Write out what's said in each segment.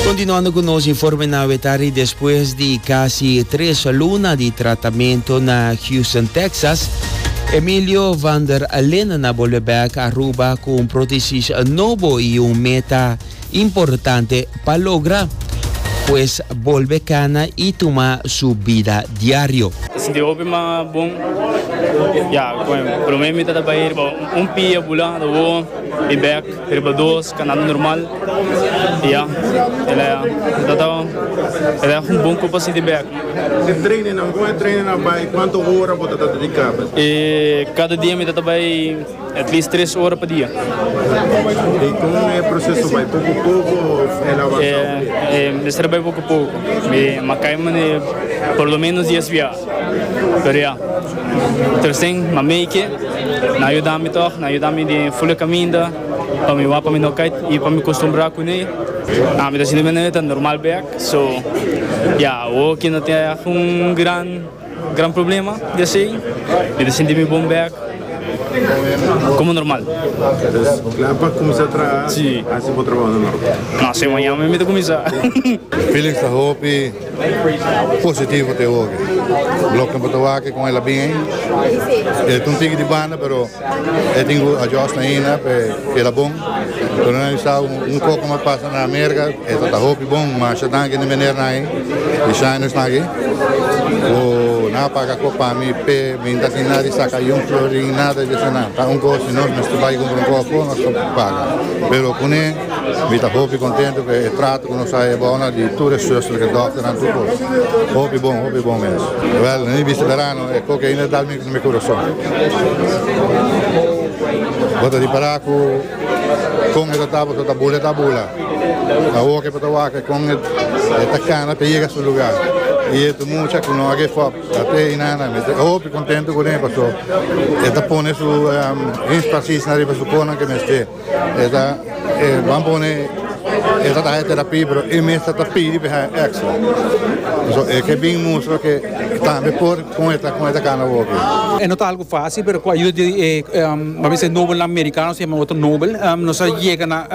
Continuando cu nos informenan awe tardi despues di casi tres luna di tratamento na Houston, Texas, Emilio van der Linden a bolbe bek Aruba cu un prothesis nobo y un meta importante pa logra, pues bolbe cana y tuma su bida diario. Ta sinti hopi mas bon ya. Como e prome mi tabata bay riba un pia, bula, ta wowo y bek. Riba dos kanando normal y ya el a tratado el a un bon copa si di bek. Te trainenan con e trainenan bay cuanto hora bo ta ta dedica pa e? Cada dia mi ta ta bay at least tres hora pa dia. Y con e proceso bay poco poco of el a avansa obligado? Mester bay poco poco mi a cay mane por lo menos diez via. Pero ya, Tercen, ma Meike, nan a yuda mi tog, nan a yuda mi di ful e kaminda pa mi wak pa mi no kait i pa mi kostumbrá kuné. Ami ta sinti manera e ta normal bek, so ya awo ke no tin algun gran, gran problema di esei, mi ta sinti mi bon bek, komo normal. Entonces, kla pa kuminsá traha, hasi bo trabounan normal? No, se mañana mi ta kuminsá. Felix ta hopi. Positivo te hopi. Bloknan por ta wak kon el a bin ei. E ta un tiki di banda pero e tin ku adjust ainda pa e keda bon. Pero nan bisa un poko mas pasa na Amerika e ta ta hopi bon. Masha danki di menernan ei di shiners nan aki ku nan a paga kop pa mi p'e bin ta sin nada di saka yun florin nada di esei nan. Ta un kos si nos mester bai kumpra un koko nos ta paga pero kuné. Mi ta hopi contento cu e trato cu nos a haya bao na di tur e zusternan, e dokternan, tur cos. Hopi bon, hopi bon mes. Wel, na mi bista berano e coke ainda a dal mietu na mi curason. Bo ta ripara cu con e tatabu ta ta bula, e ta bula. A waka, e pa ta waka, e con e ta cana pa e yega su lugar. Y e tu mucha cu no a give up, a ta ey nana. Mi ta hopi contento cunen, pasobra e ta pone su enspasis na riba su cosnan cu e mester. E ta e ban pone e ta haña terapia pero e mester ta pidi pa e haña extra. So e ke bin mustra ke tambe por kon e ta kon e ta kana hopi. E no ta algu facil pero ku ayuda di e mi a ser Nobelnan Mericano se yama Otto Nobel nos a yega na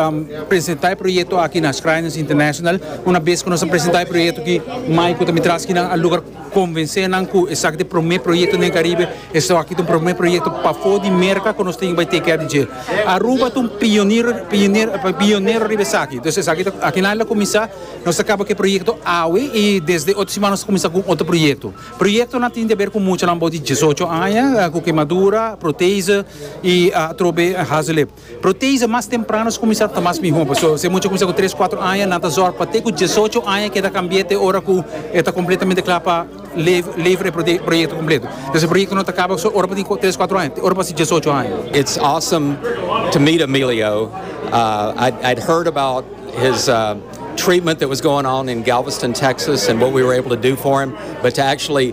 presenta e proyecto aki na Schrijners International. Una bes ku nos a presenta e proyecto aki mai ku ta mitraskenan a lugar. Konvensé nan ku esaki ta e promé proyekto den Karibe, esaki ta un promé proyekto pafó di Merka ku nos tin bai teikia di dje. Aruba ta un pioniro pionero riba esaki. Entonces esaki ta aki nan el a kuminsá, nos ta kaba ku e proyekto awe i desde otro siman nos ta kuminsá ku un otro proyekto. Proyektonan tin di haber ku muchanan abou di diesocho aña, ku kemadura, proteese i atrobe hazeleep. Protease mas temprano ta kuminsá ta mas mihó. Pasobra si e mucha kuminsá ku tres, kuatro aña nan ta zòrg pa te ku diesocho aña keda kambié te ora ku e ta kompletamente kla pa levra e proyekto kompleto. Entonces e proyekto no ta kaba so ora bo tin ku tres, kuatro aña, te ora bo hasi diesocho aña. It's awesome to meet Emilio. I'd heard about his treatment that was going on in Galveston, Texas and what we were able to do for him, but to actually